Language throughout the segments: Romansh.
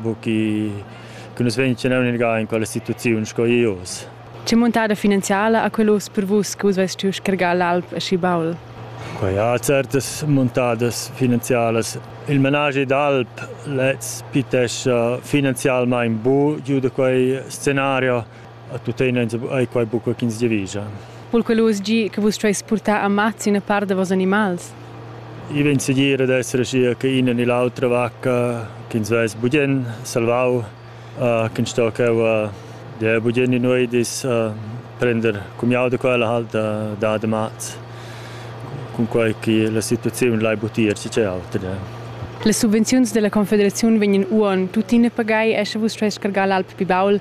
buca che nus vegn tschenau in quella situaziun sco ius. Che muntada finanziala ha quel uss per vus che vus veis stuiu scargar l'alp aschi baul? Quei ha certas muntadas finanzialas. Il menaschi d'alp lez pitescha finanzialmein bu giu da quei scenario. A tuttina ei quei buca ch'ins giavischa. Vul quel uss gi che vus stueis purtar ammazzi ina part da vos animals? I vegn segir ad esser aschia che ina ni l'autra vacca ch'ins vess bugen salvau, uh, ch'ins sto cheu uh, der bugen in uedis uh, prender cumiau da quella halt uh, da damaz. Cunquei che la situaziun lai butir si c'è auter. Ja. Le subvenziuns della Confederazione vegnan uon tuttina pagai e sche vus stueis cargar l'alp Pibaul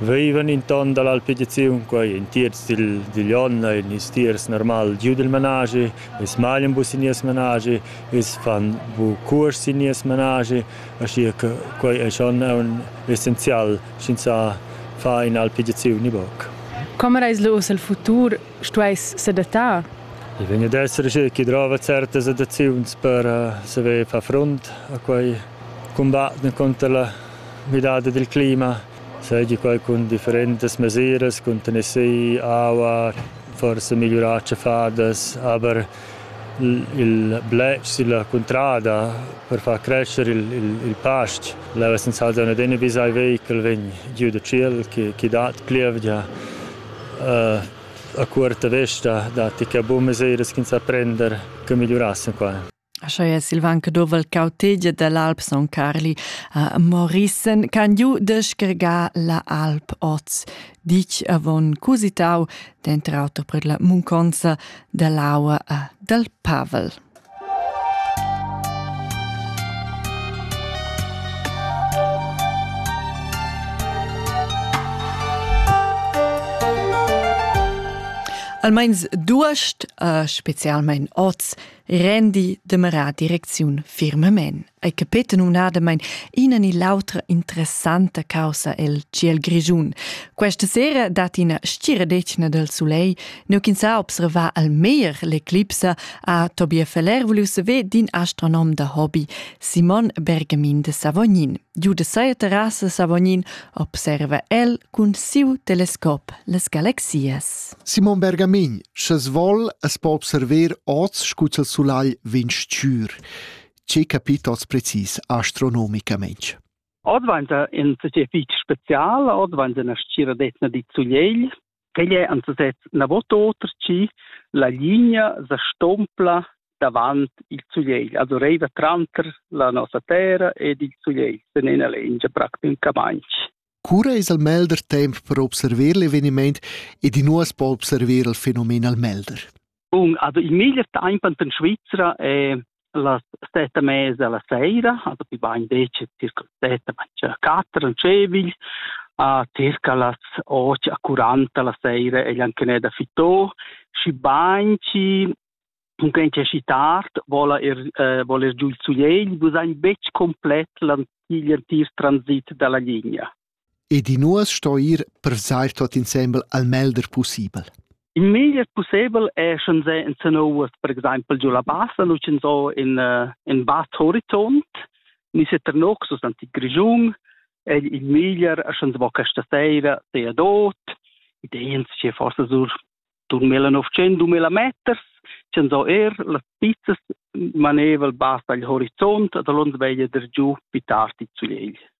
Veivan inton dalla alpediziun quei in tierz dil digl onn ein ils tiers normal giu dil manaschi, els maglian bu sin nies manaschi, els fan bu cuors sin nies manaschi, aschia che quei ei schon aunc essenzial sch'ins fa ina alpediziun ni buc. Com eis lu uss el futur stueis sedattar? I vegn ad esser schi drova certas adaziuns per saver far frunt a quei cumbat encunter la midada dil clima. seigi quei cun differentas mesiras, cun tennessir aua, forsa migliurar tschaffadas, aber il bletsch silla cuntrada per far crescer il, il, il pastg. Leu essend saltau ad in bisai vehichel vegn giu da tschiel che, che dat plievgia. Uh, a cuorta vesta datti che buca mesiras ch'ins sa prender che migliurassen quai. Scha es il van che douva'l cautegia dell'alp Son Carli a Morissen can giu deschergar la alp oz, dic avon cusitau, denter auter per la munconza dell'aua dal Pavel. Almeins duast, uh, specialmein oz, rendi demerà direcziun firmamain ei capeta numnadamain ina ni l'autra interessanta caussa el ciel grischun. Questa sera dat ina stiradetgna del soleil, neu ch'ins ha observà al meglier l'eclipsa, ha Tobias Feller voliu saver d'in astronom da hobby, Simon Bergamin de Savognin. Giu da seia terrassa Savognin observa el cun siu telescop las galaxias. Simon Bergamin, sches vol as po observer oz scu il sulagl vegn stür. Ce capit oz precis astronomicamente? Oz vainta in società fitg spezial, oz vainta ina stgira d'etna di Zugliegl, Quei è anzutez na vot oter chi la linea sa stompla davant il sulegl, also reiva tranter la nossa terra ed il sulegl sen ena lengia practicamaintg. Cura es al melder temp per observer l'eveniment ed i nu as po observer il fenomen al melder? Bun, also il meglier tempo in Svizzera è las sette e mezza la sera, also più bain decir circa sette, ma quattro in Cevigl, a circa las 8 a 40 la sera è anche da Fitò, și banci cunquei c'è și tard, vola er, eh, voler giù il suiegl, bu sein betg complet l'antier transit dalla linea. ed in uors sto ir per vesair tuot insembel al melder pussibel. Il meglier pussebel è sch'ins è in Sanowas, per exempel giu la Bassa, nu sch'ins ho in, uh, in vast horizont, ni se Ternoc sus l'antic Grischun, è il meglier sch'ins vo questa sera sea dot, ideens che forse sur 2900-2000 meters, sch'ins ho er las pizzas maneval basta il horizont, da l'ons veglia der giu più tardi zu egl.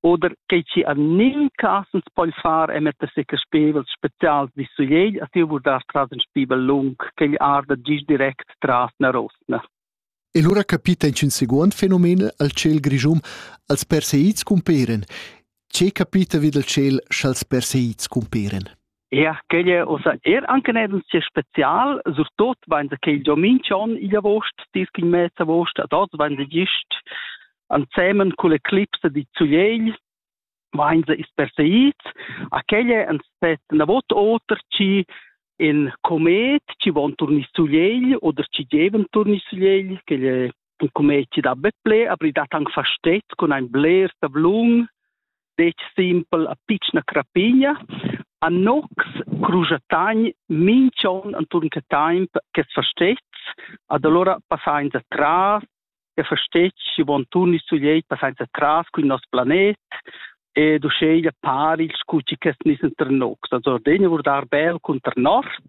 oder che ci an nin casens poi far e metter se spevels spezials di su jei a tiu vurdar tras in spibel lung che gli arda gis direct tras na rosna E lura capita in seguond fenomen al ciel grischum als perseids cumperen. Ce capita vid al ciel sch'als perseids cumperen? Ja, quella osa er anche nel sia special, surtut wenn der quel Giomin schon in August, dis in März August, dort wenn der gist ansemen con le clipse di Zugliel, wenn sie ist perseid, a quelle an set na vot oter ci in comet ci von turni Zugliel oder ci geven turni Zugliel, quelle il commerci da bet ple, aber ich dat anche versteht con ein Bläher Sablun, dec simpel a piccina crapigna, a nox crujatagn mincion anturn che taimp che versteht, ad allora passain da tras, che versteht, si von turni su lei passain da tras con il nostro planet, e du sceglie pari il scucci che nissen ter nox. Also Ordenia wurde arbel con ter nord,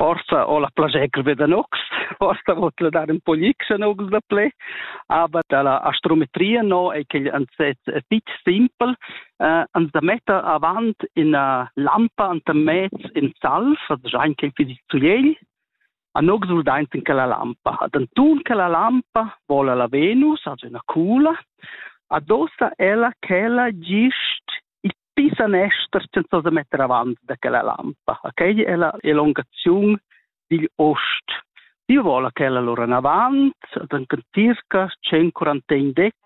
forsa ho la plascher be da nox, forsa vot la dar un po gix a nox da ple, aber da la astrometria no è che ans set fitch simpel, eh, ans da metta avant ina lampa anta mez in salf, also già anche fisit zugliegl, a nox ul daint in quella lampa. Ad antun quella lampa vola la Venus, also una cula, adossa ella chella gist il Pi sanester senza da metter avant da quella lampa. Okay? È la elongazione digl ost. Io vola quella lora in avant, ad circa 141 decs,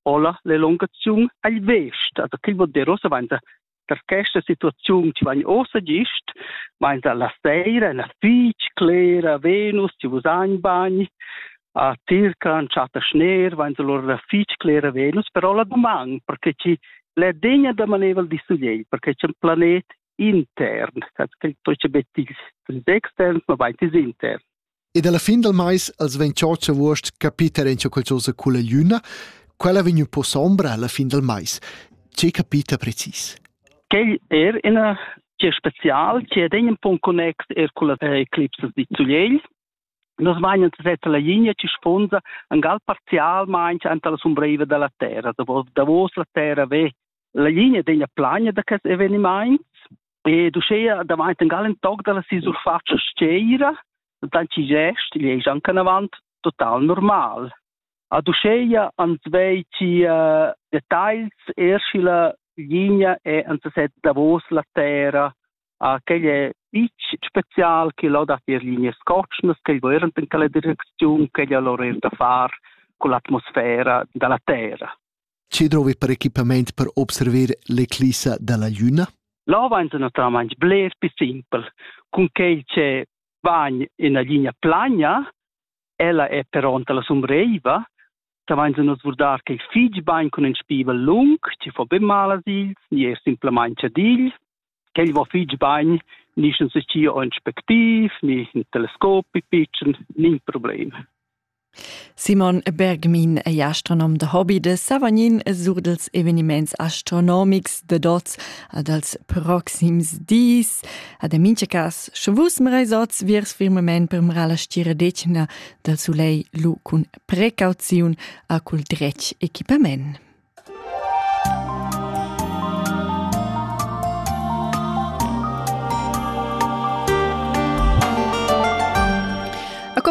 hola l'elongazione agl vest. Also, che vuol dire, ossa vainda per questa situazione ci vanno ossa gist, vainda la sera, la fitch, clera, Venus, ci vus bagni, a circan chatta schner vain lura fich clera Venus, però la doman, perché chi l'è degna da manevel di sugliei, perché c'è un planet intern, che toce betis externs, ma vain tis intern. Ed alla fin del mais als vegn cioccia vuost capiter in qualcosa con la luna, quella vegn un po' sombra alla fin del mais. Ce capita precis? Quel er ina che special, che è un po' connex er con la eclipse di Zugliel, Nus meinen seser la linea ci sponsa en gal parzialmein anta la sombreiva dalla terra, davos la terra ve la linea degna plagna da quest eveniment e du schea davanti en gal en tog dalla si surfaccia sceira, dann ci gest, gli ei anche avant total normal. A du schea ans vei ci uh, details, erschila linea e ans set davos la terra Ah, quei è fitg spezial che lo dat ir linee scotschnas, quei während in quella direcziun, quei è l'orer da far con l'atmosfera dalla terra. Che drovi per equipament per observer l'eclissa dalla luna? Là va naturalmente bler più simpel. Con quei che va in una linea plana, ella è pronta la sombreiva, savainsa nus vurdar che fich bain cun ün spivel lung, chi fo be mal a ils, ni er simplamaing chadiglis. Quel va fich bain, ni scha se scia ün spectiv, ni ün telescop pitschen, nin problem. Simon Bergmin è astronom da hobby de Savagnin e sur dels eveniments astronomics de dots ad als proxims dis. Ad en mincha cas, sche vus meresots viers firmament per mera la stira decena del solei lu cun precauziun a cul dretg equipament.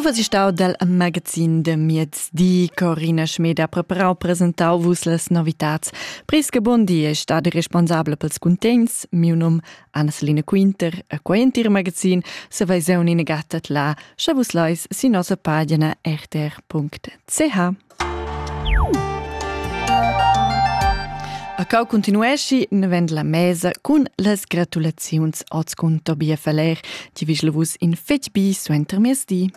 co si stau dal magazin de miez di Corina Schmeda preparau presentau vus las novitats. Pris che bon di è stade responsabel pels cuntents, miu num Anna Selina Quinter a quei entir magazin saveseun ina gatta là, sche vus leis sin nossa pagina rtr.ch. A cau continuesci navend la mesa cun las gratulaziuns oz cun Tobias Valer, ti vigel vus in fetg bi suenter miezdi.